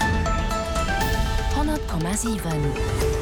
100,7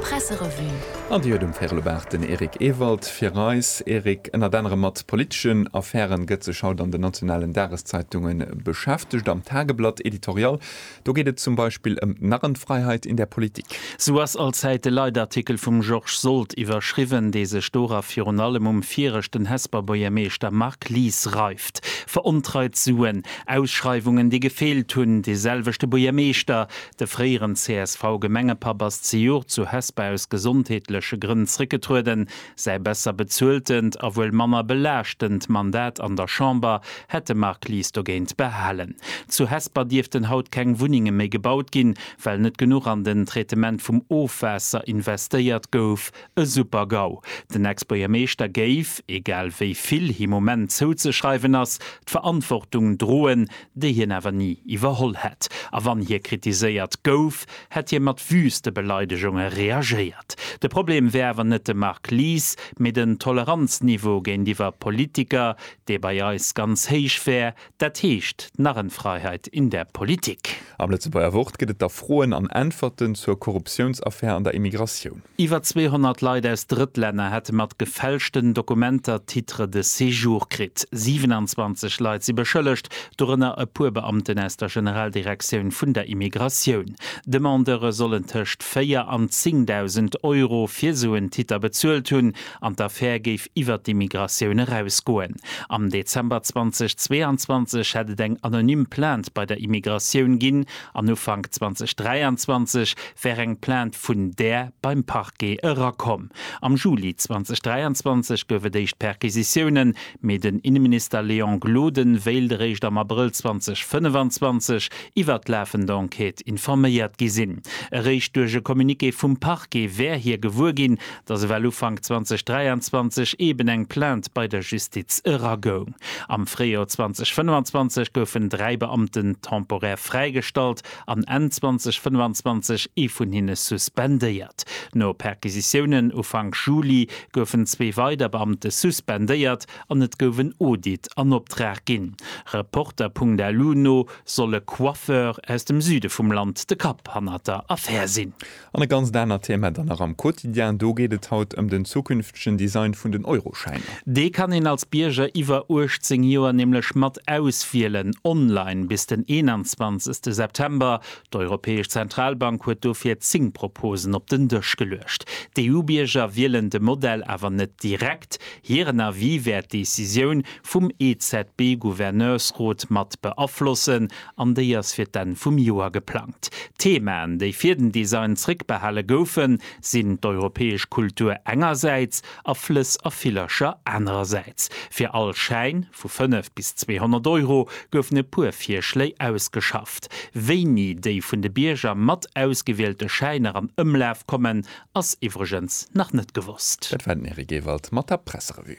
Presserevue. An déi huet um Ferlo-Baach den Eric Ewald fir eis. Eric, ënnert anerem mat politeschen Affäre gëtt sech haut an den nationalen Dageszeitunge beschäftegt. Am Tageblatt Editorial, do geet et zum Beispill ëm d'Narrenfreiheit in der Politik. Sou ass allzäit de Leitartikel vum Georges Sold iwwerschriwwen, dee sech dora virun allem um viregten Hesper Bourgermeeschter Marc Lies reif. Geschäft, verontreit Suen, Ausschreiwungen, déi gefeelt hunn, dee selwechte Buergermeeschter, de fréieren CSV-Gemengepapp, ass zejoert zu Hesper aus gesondheetleche Grënn zréckgetrueden. Säi besser bezueltent a wuel manner belaaschtend Mandat an der Chamber hätt de Marc Lies dogéint behalen. Zu Hesper dierften haut keng Wunnenge méi gebaut ginn, well net genuch an den Traitement vum Ofwaasser investéiert gouf, E Super-GAU! Den Ex-Buergermeeschter géif, egal wéi vill him um Enn zouzeschreiwen ass, d'Verantwortung droen, déi hien awer ni iwwerholl hätt. A wann hie kritiséiert gouf, hätt hie mat wüste Beleidegunge reagéiert. De Problem wär awer net de Marc Lies, mee den Toleranzniveau géintiwwer Politiker, dee bei eis ganz héich wär, Dat heescht d'Narrenfreiheit in der Politik. Am Lëtzebuerger Wort gëtt et da Froen an Äntwerten zur Korruptiounsaffär an der Immigratioun. Iwwer 200 Leit aus Drëttlänner hätte mat gefälschten Dokumenter Titre de séjour kritt. 27 Leit si beschëllegt, dorënner e puer Beamten aus der Generaldirektioun vun der Immigratioun. Demandeure sollen tëscht 4 an 10.000 Euro fir esou en Titter bezuelt hunn an d'Affär géif iwwert d'Immigratioun erausgoen. Am Dezember 2022 hätt et eng anonym Plainte bei der Immigratioun ginn an Ufank 2023 wär eng Plainte vun där beim Parquet erakomm. Am Juli 2023 gouf et éischt Perquisitiounen, mee den Inneminister Léon Gloden wéilt eréischt am Abrëll 2025 iwwert d'lafend Enquête informéiert gi sinn. Eréischt duerch e Communiqué vum Parquet wär hie gewuer ginn, dass ewell Ufank 2023 eeben eng Plainte bei der Justiz eragoung. Am Fréijoer 2025 goufen dräi Beamten temporär fräigestallt an Enn 2025 ee vun hinne suspendéiert. No Perquisitiounen Ufank Juli goufen zwee weider Beamte suspendéiert an et gouf en Audit an Optrag ginn. Reporter.lu no soll e Coiffeur aus dem Süde vum Land de Kapp hannert der Affär sinn. An e ganzt anert Thema dann nach am Quotidien, do geet et haut ëm den zukünftegen Design vun den Euroschäiner. Dee kann een als Bierger iwwer 18 Joer nämlech mat auswielen, online bis den 21 September. D'Europäesch Zentralbank huet dofir 10 Proposen op den Dësch geluecht. D'EU-Bierger wielen de Modell awer net direkt, hiren Avis wäert d'Decisioun vum EZB-Gouverneursrot mat beaflossen an déi ass fir d'Enn vum Joer geplangt. D'Themaen, déi fir den Design zréckbehale goufen, sinn d'europäesch Kultur engersäits a Flëss a Villercher anerersäits. Fir all Schäin, vu 5 bis 200 Euro, goufen e puer Virschléi ausgeschafft. Wéini déi vun de Bierger mat ausgewielte Schäiner an Ëmlaf kommen, ass iwwregens nach net gewosst. Dat war den Eric Ewald mat der Presserevue.